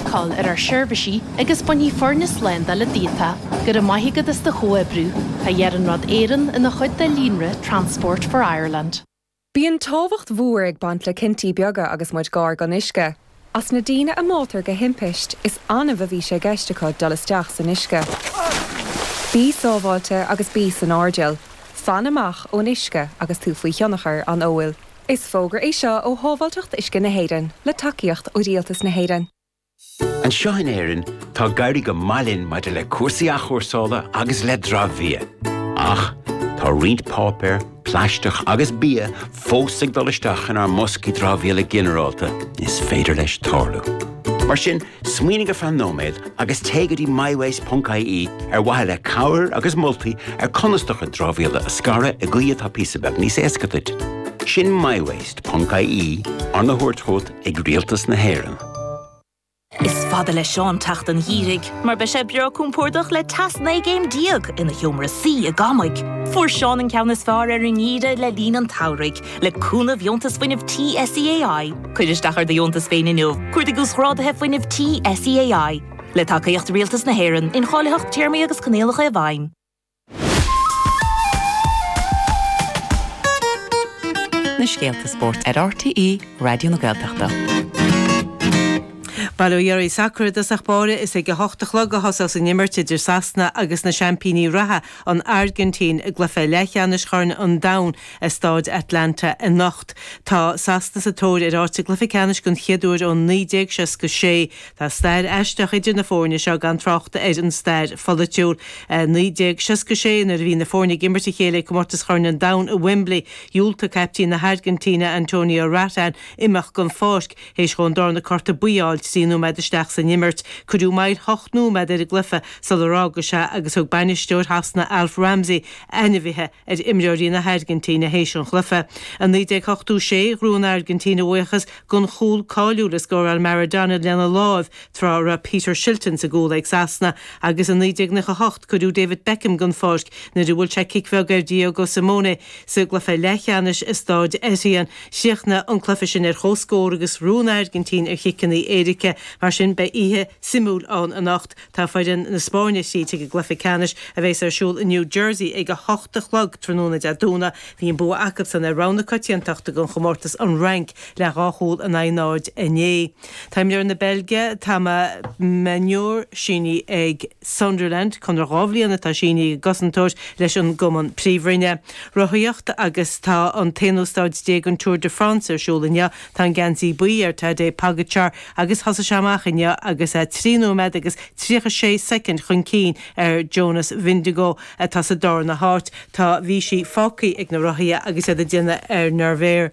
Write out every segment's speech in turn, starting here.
cáil ar ár seirbhísí agus bainfidh foirne slándála díot é go raibh maith agat as do chomhoibriú, tá Iarnród Éireann ina chuid de líonra Transport for Ireland. Bíonn tábhacht mhór ag baint le cinntí beaga agus muid gar don uisce. As na daoine a mbáitear de thimpiste, is annamh a bhí sé i gceist acu dul isteach san uisce. Bí sábháilte agus bí san airdeall. Fan amach ón uisce agus tú faoi thionchar an óil. Is fógra é seo ó Shábháilteacht Uisce na hÉireann, le tacaíocht ó Rialtas na hÉireann. Anseo in Éirinn, tá ag éirí go maith linn maidir le cúrsaí athchúrsála agus le dramhbhia. Ach, tá roinnt páipéar, plaisteach agus bia fós ag dul isteach inár mboscaí dramhaíola ginearálta is féidir leis tarlú. Mar sin, Smaoinigh ar feadh nóiméad agus téigh go dtí mywaste.ie ar mhaithe le cabhair agus moltaí ar conas do chuid dramhaíola a scaradh i gcaoi atá píosa beag níos éasca duit. Sin mywaste.ie, arna thabhairt chugat ag Rialtas na hÉireann. Is fada le Seán teacht an Gheimhridh mar beidh sé breá compordach le teas 19 gcéim ina sheomra suí i gCamaigh. Fuair Seán an ceann is fearr ar an nGeimhreadh le linn an tSamhraidh. Le cúnamh Dheontas Fuinnimh Tí SEAI, cuir isteach ar do dheontas féin inniu. Cuardaigh Uasghráduithe Fuinnimh Tí SEAI. Le tacaíocht Rialtas na hÉireann, incháilitheacht téarmaí agus coinníollacha i bhfeidhm. na scéalta spóirt ar RTÉ Raidió na Gaeltachta. Bail ó Dhia oraibh, sacar i dtosach báire, is ag a hocht a chlog a thosós an imirt idir Sasana agus na seaimpíní reatha, An Airgintín i gcluiche leathcheannais Chorn an Domhain i Stáid Atlanta anocht. Tá Sasana sa tóir ar áit sa gcluiche ceannais den chéad uair ó 1966. Tá stair aisteach idir na foirne seo gan trácht ar an stair pholaitiúil. 1966, nuair a bhí na foirne ag imirt a chéile ag Comórtas Chorn an Domhain i Wembley, dhiúltaigh caiptín na hAirgintíne, Antonio Rattín, imeacht den pháirc. Théis dhó an darna cárta buí a fháil trí nóiméad isteach san imirt, cuireadh moill ocht nóiméad ar an gcluiche sular fhága sé agus thug bainisteoir Shasana Alf Ramsey ainmhithe ar imreoirí na hAirgintíne théis an chluiche. I 1986, ghnóthaigh an Airgintín a bhuíochas den chúl cáiliúil a scóráil Maradona lena láimh tráth a raibh Peter Shilton sa gcúl ag Sasana agus i 1998 cuireadh David Beckham den pháirc nuair a bhuail sé cic bheag ar Diego Simeone sa gcluiche leathcheannais i Stáid Etienne. Chríochnaigh an cluiche sin ar chomhscór agus ghnóthaigh an Airgintín ar chiceanna éirice. Mar sin, beidh oíche suimiúil ann anocht. Tá foireann na Spáinne thríd chuig an gcluiche ceannais a bheas ar siúl i New Jersey ag a hocht a chlog tráthnóna Dé Domhnaigh. Bhí an bua acubsan ar rogha na coitiantachta don chomórtas, an Fhrainc, le dhá chúl in aghaidh náid inné. Tá imreoir na Beilge, Thomas Meunier, sínithe ag. Sunderland, conradh dhá bhliain atá sínithe ag an gcosantóir leis an gcumann Príomhroinne. Rothaíocht agus Tá an t-aonú stáid déag den Tour de France ar siúl inniu. Tá an geansaí buí ar Tadej Pogačar agus thosaigh sé amach inniu agus é trí nóiméad agus tríocha sé soicind chun cinn ar Jonas Vingegaard atá sa darna háit. Tá Vichy fágtha ag na rothaithe agus iad ag déanamh ar Nevers.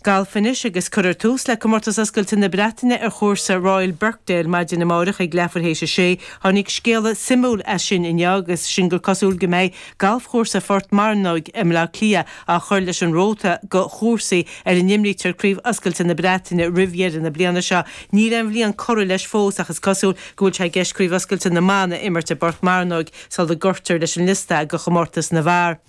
Galf anois agus cuirfear tús le Comórtas Oscailte na Breataine ar chúrsa Royal Birkdale maidin amárach ag leathuair théis a sé. Tháinig scéala suimiúil as sin inniu agus sin gur cosúil go mbeidh galfchúrsa Phort Mearnóg i mBleá Cliath á chur leis an róta go chúrsaí ar a n-imrítear Craobh Oscailte na Breataine roimh dheireadh na bliana seo. Níl aon bhliain curtha leis fós ach is cosúil go bhfuil sé i gceist Craobh Oscailte na mBan a imirt i bPort Mearnóg sula gcuirtear leis an liosta go Chomórtas na bhFear.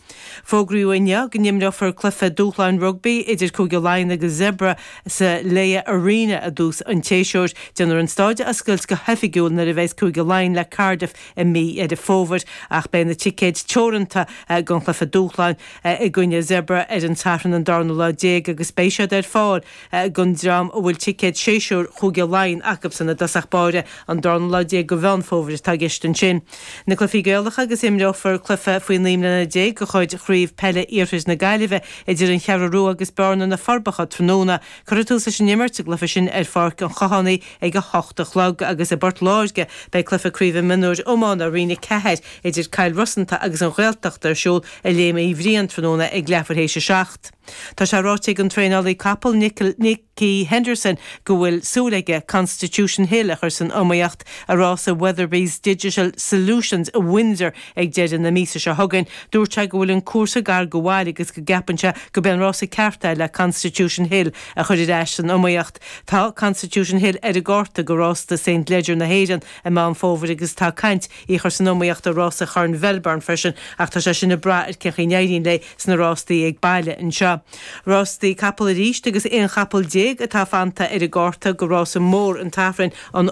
Fógraíodh inniu go n-imreofar cluiche dúshláin rugbaí idir Cúige Laighean agus Zebre sa Laya Arena i dtús an tséasúir. Déanfar an staid a oscailt go hoifigiúil nuair a bhuailfeas Cúige Laighean le Cardiff i mí Dheireadh Fómhair ach beidh na ticéid teoranta don chluiche dúshláin i gcoinne Zebre ar an Satharn an darna lá déag agus beidh siad ar fáil don dream a bhfuil ticéad séasúir Chúige Laighean acubsan i dtosach báire an darna lá déag de Mheán Fómhair atá i gceist ansin. Na Cluifí Gaelacha agus imreofar cluife faoi naoi mbliana déag de chuid Chraobh Peile Iarthair na Gaillimhe idir An Cheathrú Rua agus Bearna, Na Forbacha tráthnóna. Cuirfear tús leis an imirt sa gcluife sin ar Pháirc an Chathánaigh ag a hocht a chlog agus i bPort Láirge beidh cluife craoibhe mionúir iomána Roinn 4 idir Cill Rosanta agus An Ghaeltacht ar siúl i Léim Uí Bhriain tráthnóna ag leathuair théis a seacht. Tá sé ráite ag an traenálaí capall Nicky Henderson go bhfuil súil aige Constitution Hill a chur san iomaíocht i rása Weatherbys Digital Solutions i Windsor ag deireadh na míosa seo chugainn. Dúirt sé go bhfuil an cúrsa gar go bhaile agus go gceapann sé gurb é an rása ceart é le Constitution Hill a chur ar ais san iomaíocht. Tá Constitution Hill ar an gcárta go rásta St Leger na hÉireann i Meán Fómhair agus tá caint í a chur san iomaíocht i rása Chorn Mhelbourne freisin ach tá sé sin ag brath ar cén chaoi a n-éiríonn léi sna rástaí ag baile anseo. Rástaí capall arís agus aon chapall déag atá fanta ar an gcárta go rása mór an tSathairn, an.